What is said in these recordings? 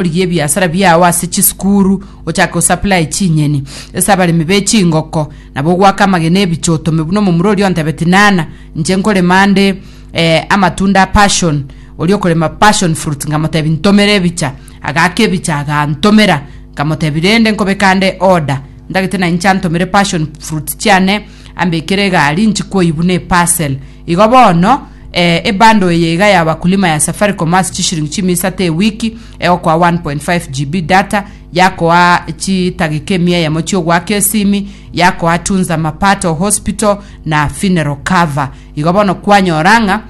origie ebiasara biao ase chisukuru, ochake gosupply chinyeni ase abaremi be chingoko, nabo ogwake amagena e ebiche otome buna omomura oria ontebeti nana, inche nkorema nde eh, amatunda a passion, oria okorema passion fruit ngamotebi ntomera ebicha, agaka ebicha agantomera, nkamotebi rende nkobeka nde order, ndagete na inche antomere passion fruit chiane ambekere egari nchikoyi buna eparcel. Igo bono, ee, ebundle eye iga ya abakulima ya Safaricom ase chishiringi chimu isato ewiki, egokoa 1.5 GB data, yakoa chidageka emia eyemo chi'ogoaka esimi, yakoa Tunza Mapato Hospital, na Funeral Cover. Igo bono kwanyora ng'a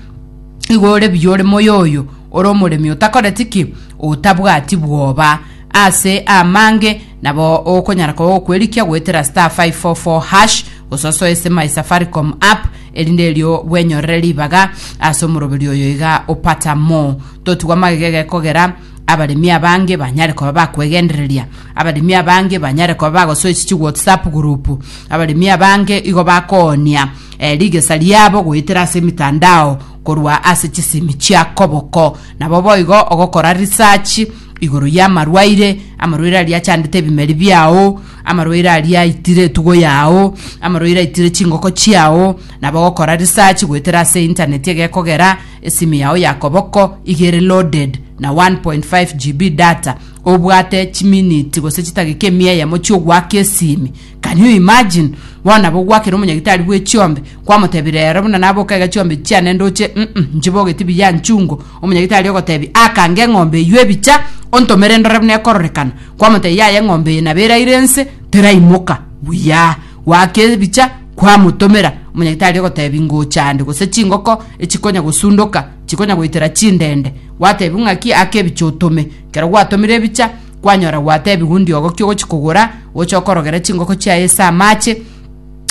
igo ore buya ore moyoyo, ore omoremi otakoreti ki? Otabwati bwoba. Ase amange, nabo okonyara koba ogokwerikia goetera *544#, gosoa soe ase My Safaricom app, erinde erio gwenyorere ribaga ase omoroberi oyo iga opata mo. Totigwe amagega gekogera, abaremi abange banyare koba bakwegendereria, abaremi abange banyare koba bagosoisia chiwhatsapp group, abaremi abange igo bakoonia eh, rigesa riabo goetera ase emitandao korwa ase chisimi chia koboko. Nabo boigo ogokora research igoro y'amarwaire, amarwaire aria achandete ebimeri biao, Amarwaire aria aitire etugo yao, amarwaire aitire chingoko chiao, nabo gokora research goetera ase internet egekogera, esimu yao ya koboko iga ere loaded na 1.5 GB data, obwate chiminiti gose chitageka emia eyemo chi'ogwaka esimi. Can you imagine? Bono nabo ogwakera omonyagitari bw'echiombe, Kwamotebire ero buna naboka iga chiombe chiane ndoche, mm, nchiboge tibiya nchungo. Omonyagitari ogotebia, Akange eng'ombe eyio ebicha, ontomere ndore buna ekororekana. Kwamotebia, Yaya eng'ombe eye nabo eraire ense, teraimoka. Buya. Goaka ebicha, kwamotomera. Omonyagitari ogotebia, Ngocha ande, gose chingoko echikonya gosundoka, chikonya goitera chindende. Gwatebiwa ng'aki, Aka ebicha otome. Kero gwatomire ebicha, kwanyora gwatebiwa ndiogo ki ogochi kogora, oche okorogere chingoko chiaye ase amache,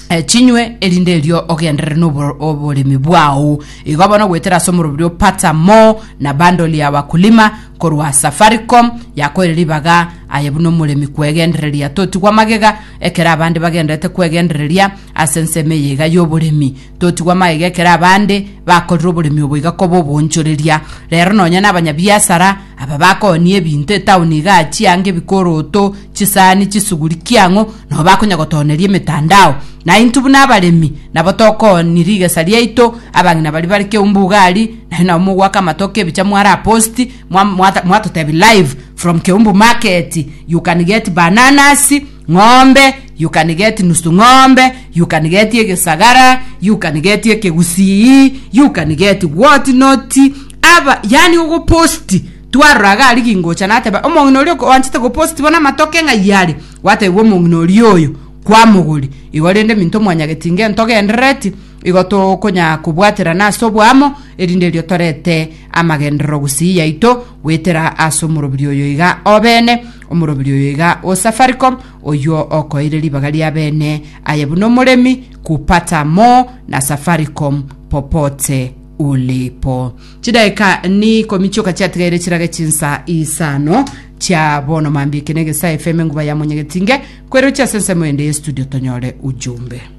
eh, chinywe erinde erio ogenderere n'obo- oboremi bwao igo bono gwetera ase omorobiri opata mo na bandoli ya wakulima korwa safaricom yakoire ribaga aye buna omoremi kwegendereria totigwa magega ekero abande bagenderete kwegendereria ase ensemo eye iga y'oboremi totigwa magega ekero abande bakorire oboremi obo iga koba obonchoreria rero nonya na abanyabiasara Aba bakooniie ebinto etaoni iga chianga ebikoroto, chisani, chisuguri, kiang'o, nao bakonya gotooneria emetandao. Na intwe buna abaremi nabo tokooni rigesa riaito, abang'ina baria bare keumbu ugari, nario nabo mogoaka amatoke ebicha moare aposti, mwa- mwata- mwatotebi live from Keumbu market, you can get bananas, Ng'ombe yukanigeti nusu ng'ombe, yukanigeti egesagara, yukanigeti ekegusii, yukanigeti gwoti noti aba yani ogoposti twarora iga aria gingocha nateba omong'ina oria oanchete goposti bono amatoke ng'ai are gwatebiwa omong'ina oria oyo kwamogori igo rende minto mwanyageti inga ntogenderereti igo tokonya kobwaterana ase oboamo erinde erio torete amagenderero gusii yaito Goetera ase omoroberio oyo iga obene, omoroberio oyo iga o Safaricom, oyio okoeire ribaga ria bene aye buna omoremi, kupata more na Safaricom popote ulipo. Chidaeka ni ikomi chioka chiatigaire chirage chinsa isano chia bono mambia eke na egesae FM enguba ya monyegetinge, kwerochia ase ensemo ende ye studio tonyore ujumbe.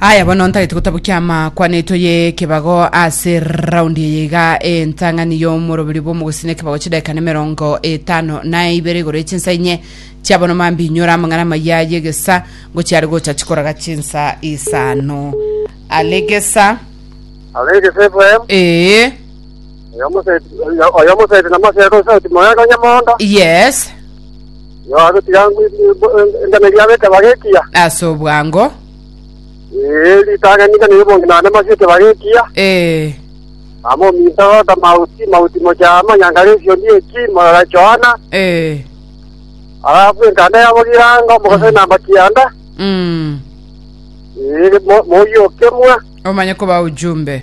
Aya bono ntagete gotabokia amakwaneto y'ekebago ase raundi eye iga entang'ani y'omorobiri bw'omogusini ekebago chidakika na emerongo etano na ibere igoro y'echinsa inye chia bono mambi inyora amang'ana amaya y'egesa ngochia are gocha chikoraga chinsa isano alegesa Arege Efraimu, ee oyo moseti, oyo- oyo moseti na moseti osauti moyega onye mondo. yes Yo agotiga engano eria ab'ekebago ekiya. Ase obwango. Ee, ritang'ani engano y'obonge naende amasi ekebago ekiya. Ee. Amo ominto agota mauti, mauti mochia amo nyangare esiondi eki, morora Johana. Ee. Arabwo enkanda yabo girango, mogosai namba kianda. Mm. Ee, mo- moyio okemwa. Omanye koba ujumbe.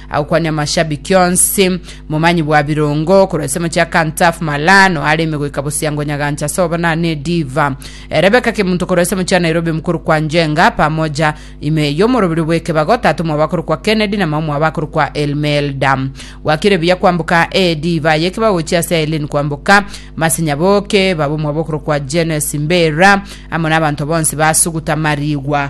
Agokwania amashabiki onsi, momanyi bwa birongo korwa ase amache a Kantafu Malan oareme goika Bosiango Nyagancha ase obonane Diva. Rebecca Kemunto korwa ase amache a Nairobi mokorokwa Njenga pamoja ime y'omorobiri bw'ekebago tata omwabo akorokwa Kennedy na mama omwabo akorokwa Elmelda. Gwakire buya kwamboka Ediva y'ekebago gochia ase Aileen kwamboka Masinya boke baba omwabo okorokwa Jenesi Mbera amo nabanto bonsi basuguta marigwa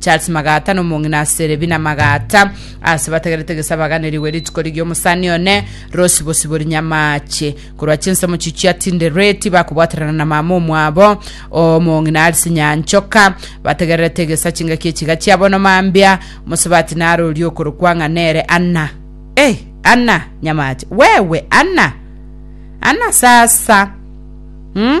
Charles Magata nomong'ina ase Rebina Magata ase batagerete gesabaganirigwe rituko rigiya omosani one Rose Bosibori Nyamache korwa chinsemo chichio atindereti bakobwaterana na mama omwabo omong'ina Alice Nyanchoka bategererete gesa chingaki echiga chia bono mambia mosabati narorie okorokwa ng'a nere Anna eh Anna Nyamache wewe Anna Anna sasa hmm?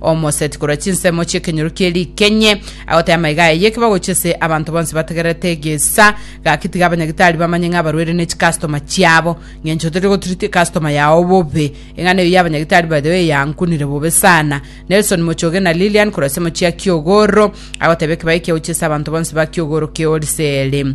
Omoseti korwa chinsemo chi'ekenyoro kie rikenye agoteba amaiga aya y'ekiba gochia ase abanto bonsi bategererete egesa gaki tiga abanyagitari bamanye ng'a abarwere ne chikastoma chiabo ng'encho tori gotreat ekastoma yao bobe eng'ana eyo y'abanyagitari by the way yankunire bobe sana Nelson Mochoge na Lilian korwa ase mochia Kiogoro agoteba ekibaye ekia gochia ase abanto bonsi ba Kiogoro keoriseri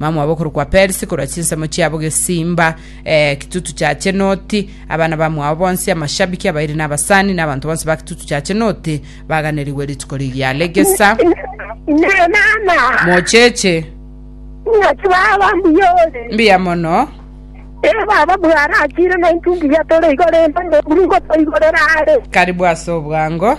Bamwabo okorokwa Persi korwa chinsemo chiabo gesimba, Ekitutu kia Chenoti, abana bamwabo bonsi, amashabiki, abairi na abasani, na abanto bonsi ba Kitutu kia Chenoti, baganerigwe rituko riria regesa. Inee mama, Mocheche, ing'aki baba mbuya ore? mbuya mono. Ee baba, bwarachire naintwe mbuya tore igo rende, ngoburu ngotoigorera are. Karibu ase obwango.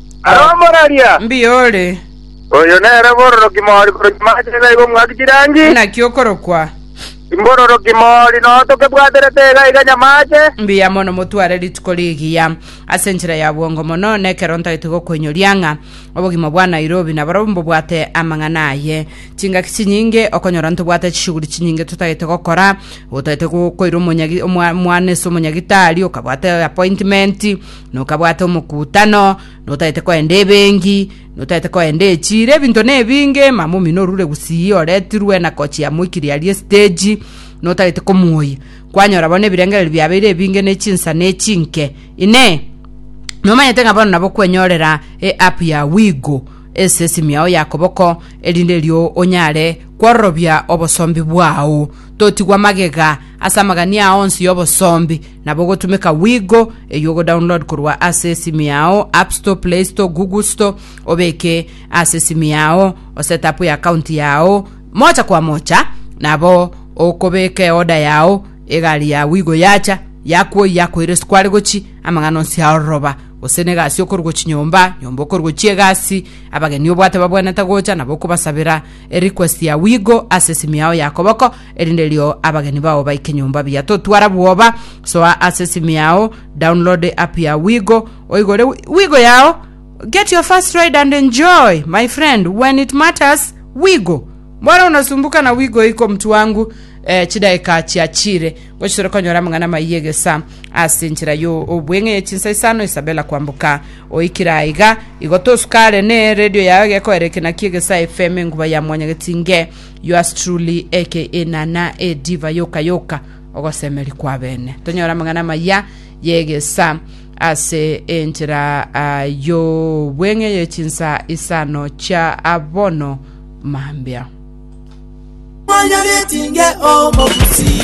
Aromoraria. Mbuya ore. Oyo nere bororoki mori korokia mache iga iga omwaki chirangi. Naki okorokwa. Imbororoki mori noo tokebwaterete iga iga nyamache. Mbuya mono motware rituko rigiya ase enchera ya bwongo mono nekero ntagete gokoinyoria ng'a obogima bwa Nairobi naboro mbobwate amang'ana aye. Chingaki chinyinge okonyora ntobwate chishughuli chinyinge totagete gokora, otagete gokoira omonyagi omwa mwana ase omonyagitari, okabwate appointment, nokabwate omokutano, notaete koenda ebengi, notaete koenda echiro, ebinto na ebinge, mama omino orure gusii oretirwe na kochi ya moikiri aria estage, notagete komuoyia, kwanyora bono ebirengereri biabeire ebinge ne chinsa ne chinke, inee nomanyete ng'a bono nabo kwenyorera e app ya Wigo ase esimu yao ya koboko, erinde erio onyare kwororobia obosombi bwao, totigwa magega ase amagania aa onsi y'obosombi. Nabo gotumeka Wigo, eyio ogo download korwa ase esimu yao, App Store, Play Store, Google Store, obeke ase esimu yao, oset up ya account yao, mocha kwa mocha, nabo okobeka eoda yao, egari ya Wigo yacha, yakwoi yakoira ase kware gochi, amang'ana onsi aroroba, gose negasi okorwa gochi nyomba, nyomba okorwa gochi egasi, abageni obwate babwenete gocha, nabo okobasabera erequest ya Wigo ase esimu yao ya koboko, Erinde erio abageni bao baike nyomba buya totwara bwoba. Soa ase esimu yao, download app ya Wigo, oigore wi- Wigo yao. Get your first ride and enjoy, my friend, when it matters, Wigo. Mbora unasumbuka na Wigo iko mtu wangu. Eh, chidaika chiachire gochitore konyora amang'ana maiyi egesa ase enchera yo obweng'e ye chinsa isano Isabella kwamboka oikire aiga igo tosukare ne radio yao egekoera ekenaki egesa FM enguba ya mwanyagetinge Yours truly aka Enana e Diva yoka yoka ogosemeria kwabene. Tonyore amang'ana amaya yegesa ase enchera ah, y'obweng'e ye chinsa isano chia abono mambia.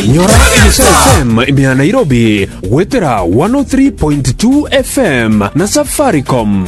Nyora Elisha FM imea Nairobi gwetera 103.2 FM na Safaricom.